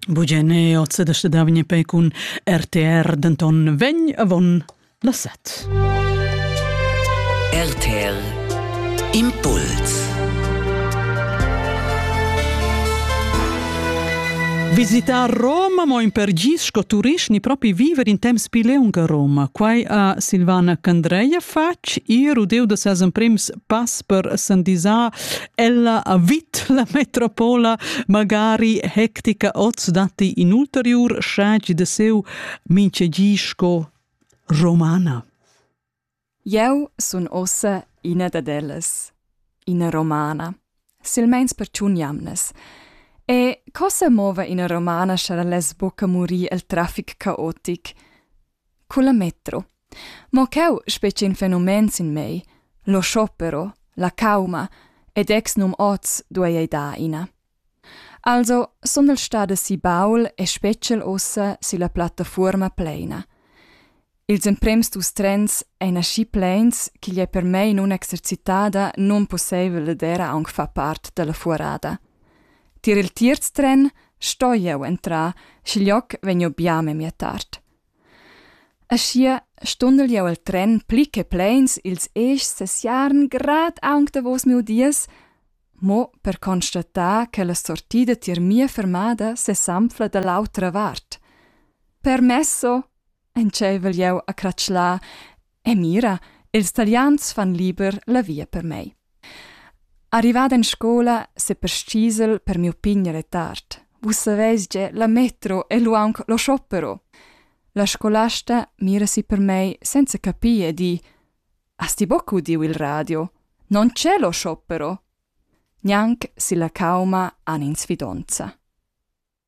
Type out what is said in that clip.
Bugene ozze da stedavgne pe cun RTR denton vegn avon la set. RTR Impuls Visitar Roma mo in per gis sco turist ni propi viver in temps più leung a Roma. Quai a Silvana Candreia fatg ir udeu da ses emprims pass per San Disà Ella ha vit la metropola magari hectica oz datti in ulteriur schagi de seu minchegi sco romana. Eu sun ossa ina dad ellas, ina romana, silmeins per tun jamnas. E cosa mova ina romana scha less buca murir el traffic caotic? Culla metro. Mo cheu spetg in fenomen sin mei, lo sciopero, la cauma, ed ex num oz duei ei dar ina. Also sondel stada si baul e special ussa silla plattafuorma pleina. Ils emprems dus trens ein aschi pleins ch'igl ei per mei nun exercitada nunpusseivel d'era aunc far part dalla fuorada. Tier il tierz tren sto jeu entrar, schiglioc vegniu bia memia tard. Aschia stundel jeu el tren pli che pleins ils eschs sesiarn grad aunc davos miu dies, mo per constatar che la sortida tier mia fermada sesanfla dall'autra vart. Permesso, Entscheivel jeu a cratschlar e mira, ils Talians fan liber la via per mei. Arrivad en scola seperstgisel per miu pign retard. Vus saveis ge la metro e lu aunc lo sciopero. La scolasta mira si per mei senza capir e di Has ti boc udiu il radio? Non c'è lo sciopero. Gnanc si la cauma han in sfidonza.